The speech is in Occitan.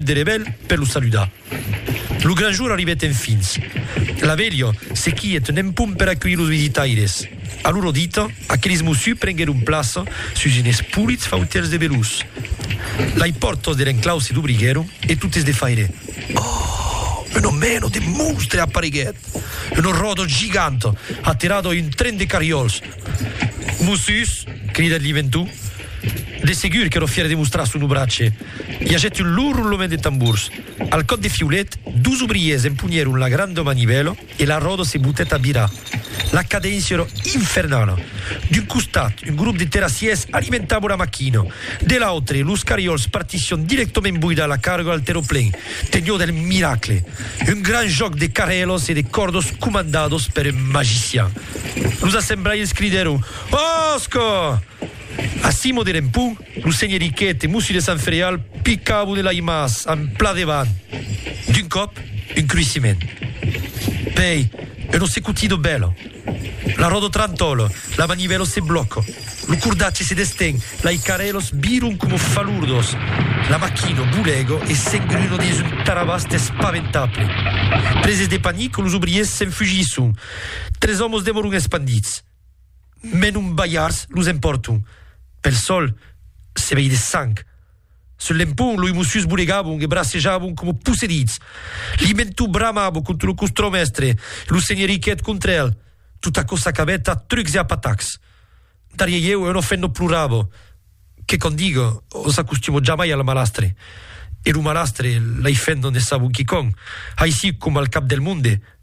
de revel per lo saludar. Lo gran jour arribèt enfins. La velha se quièt nen pum per aculhir los visitaires. A loro dita, aqueles mossus prenguèron plaça sus enes polits fautèls de velós. Lai pòrtas de l'enclau se dobriguèron e totes de faire, Oh! Una mena de monstre apareguèt! Una ròda giganta aterada a un tren de carriòls! Mossus! cridèt l'inventor. De segur qu'èra fièr de demostrar son obratge. I agèt un lourd ronlament de tambors. Al còp de fiulet, dus obriers empunhèron la granda manivèla e la ròda se botèt a virar. La cadéncia èra infernala. D'un costat, un grop de terrassièrs alimentava la maquina. De l'autre, los cariòls partissián dirèctament boidar la carga al terraplen. Teniá del miracle. Un grand jòc de carrèlas e de còrdas comandadas per un magician. Los assemblairs cridèron, Òsca! Ací moderem pun, lo senheriquet e Mossi de Sant Fereal picabon e l'aimas en pla devant. D'un còp, un cruissiment. Pei, un ossecutido bèlo. La ròdo trantòla, la manivèlo se blòca, lo cordatge se desten, lai carèlos viron coma falurdos, la machino bolego e s'engruno dins un tarabast espaventable. Preses de panic, los obriers s'enfugisson. Tres òmos demoron espandits. Mès non balhards los empòrto. Pel sòl se vei de sang. Sul lempon loi mossus bonegabon e bracejabon coma possedits. L'imento bramabo contra lo costron mèstre e lo senheri qu'èt contra el. Tot aquò s'acabèt a trucs e a patacs. Darrier ieu un ofènt non plorabo, que quò diga, o s'acostumo jamai al malastre. E lo malastre l'ai fèt non ne sabon quicòm, aicí coma al cap del monde,